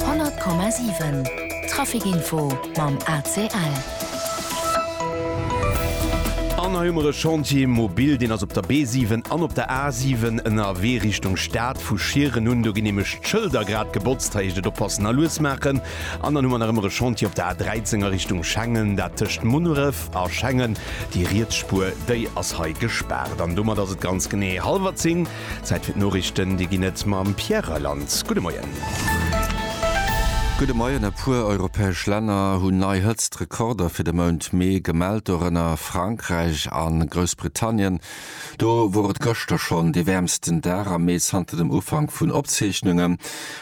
100,7 Trafikinfo mam ACL. An hei hu mer e Chantier mobil, deen ass op der B7 an op der A7 ënnerwee Richtung Stad. Vu Schieren un do ginn nämlech d'Schëlder grad gebotzt. Hei heescht et oppassen a lues maachen. An dann hu mer nach ëmmer e Chantier op der A13 a Richtung Schengen, dat tëscht Munneref a Schengen. Déi riets Spuer, déi ass hei gespaart. An domat ass et ganz genee hallwer zéng. Zäit fir d'Noriichten, déi ginn et mam Pierre Reyland. Gudde Moien. Gudde Moien. E puer europäesch Länner hunn nei Hëtztrekorder fir de Mount Mee gemellt, dorënner Frankräich a Groussbritannien. Do wor et gëschter schonn dee wäermsten Dag am Mee zanter dem Ufank vun Opzeechnungen.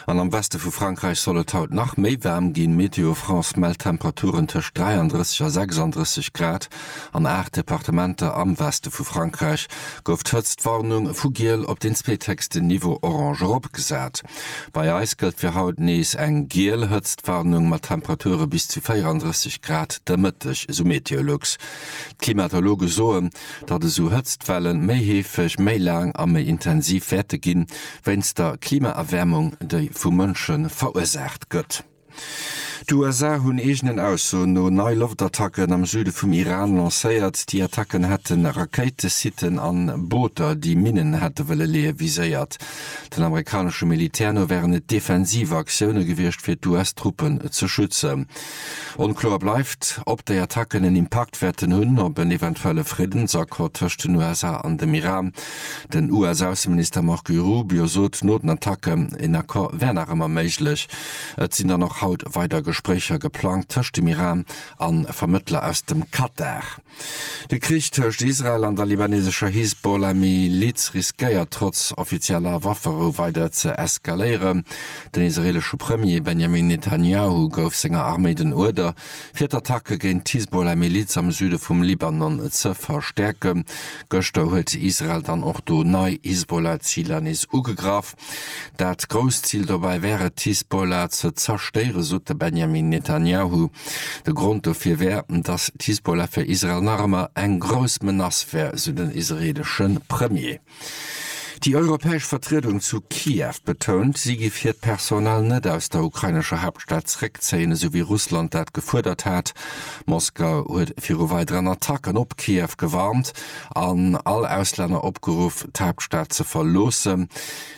An am Weste vu Frankräich soll et haut nach méi waarm ginn. Météo France mellt Temperaturen tëscht 33 a 36 Grad. An aacht Departementer am Weste vu Frankräich gouf d'Hëtztwarnung vu giel op deen zweethéchsten Niveau orange eropgesat. Bei eis gëllt fir haut nees eng giel Hëtztwarnung mat Temperature bis zu 34 Grad de Mëtteg, esou Meteolux. D'Klimatologe soen, datt esou Hëtztwelle méi heefeg, méi laang a méi intensiv wäerte ginn, wéinst der Klimaerwäermung, déi vu Mënsche verursaacht gëtt. D'USA hunn eegenen Aussoen no nei Loftattacken am Süde vum Iran lancéiert. Déi Attacken hätte Rakéitesitten an Booter, déi Minnen hätte wëlle leeë viséiert. Den amerikanesche Militär no wären et defensiv Aktioune gewiescht fir d'US-Truppen ze schützen. Onkloer bleift, ob déi Attacken en Impakt wäerten hunn op en eventuelle Friddensaccord tëscht den USA an dem Iran. Den US-Ausseminister Marco Rubio sot no den Attacken, een Accord wär nach ëmmer méiglech. Et sinn dann och haut weider Gespréicher geplangt tëscht dem Iran a Vermëttler aus dem Katar. De Krich tëscht Israel an der libanesescher Hisbollah-Miliz riskéiert trotz offizieller Wafferou weider ze eskaléieren. Den israeelesche Premier Benjamin Netanjahu gouf senger Arméi den Uerder, Fir d'Attacke géint d'Hisbollah-Miliz am Süde vum Libanon ze verstäerken, gëschter huet Israel dann och do nei Hisbollah-Ziler nees ugegraff. Dat grousst Zil dobäi wär et, d'Hisbollah ze zerstéieren, sot de Benjamin Netanjahu. De Grond dofir wär, datt d'Hisbollah fir Israel nach ëmmer eng grouss Menace wär, sou den israeelesche Premier. Déi europäesch Vertriedung zu Kiew betount, si géif hiert Personal net aus der ukrainescher Haaptstad zréckzéien, esou wéi Russland dat gefuerdert hat. Moskau huet viru weideren Attacken op Kiew gewarnt an all Auslänner opgeruff, d'Haaptstad ze verloossen.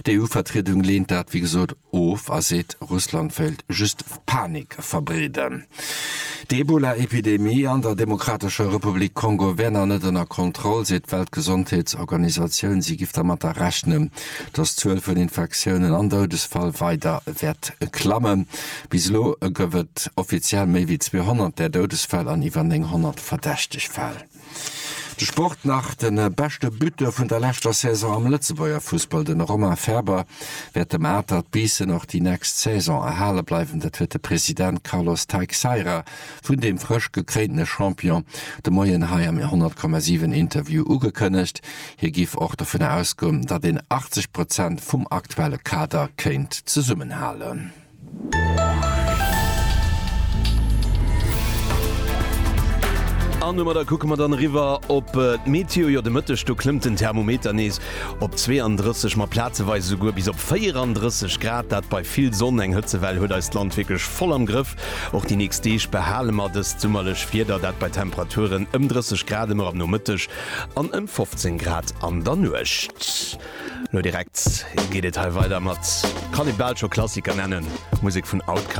D'EU-Vertriedung leent dat wéi gesot of a seet, Russland wéilt just. Panik verbreeden. Déi Ebola-Epidemie an der Demokratescher Republik Kongo wär nach net ënner Kontroll, seet d'Weltgesondheetsorganisatioun. Si géif dermatter rechnen, datt d'Zuel vun Infektiounen an Doudesfall weider wäert klammen. Bis elo gouf et offiziell méi wéi 200 där Doudesfäll an iwwer 900 verdächteg Fäll. De Sport nach de beschte Buteur vun der leschter Saison am Lëtzebuerger Fussball. De Romain Faeber wäert dem Atert Biissen och déi nächst Saison erhale bleiwen. Dat huet de President Carlos Teixeira vun deem frësch gekréintene Champion de Moien hei am 100,7 Interview ugekënnegt. Hie giff och dovun ausgoen, datt een 80 Prozent vum aktuelle Kader kéint zesummenhalen. An domadder kucke mer dann eriwwer op d'Meteo. Jo, de Mëtteg do klëmmt den Thermometer nees op 32, ma plazeweis esouguer bis op 34 Grad, dat bei vill Sonn. Eng Hëtzewell huet eist Land wierklech voll am Grëff. Och déi nächst Deeg behale mer dëst summerlech Wieder, dat bei Temperaturen ëm 30 Grad ëmmer am Nomëtteg an ëm 15 Grad an der Nuecht. Lo direkt geet et hei weider mat, kann ee bal scho Klassiker nennen, Musek vun Outkast.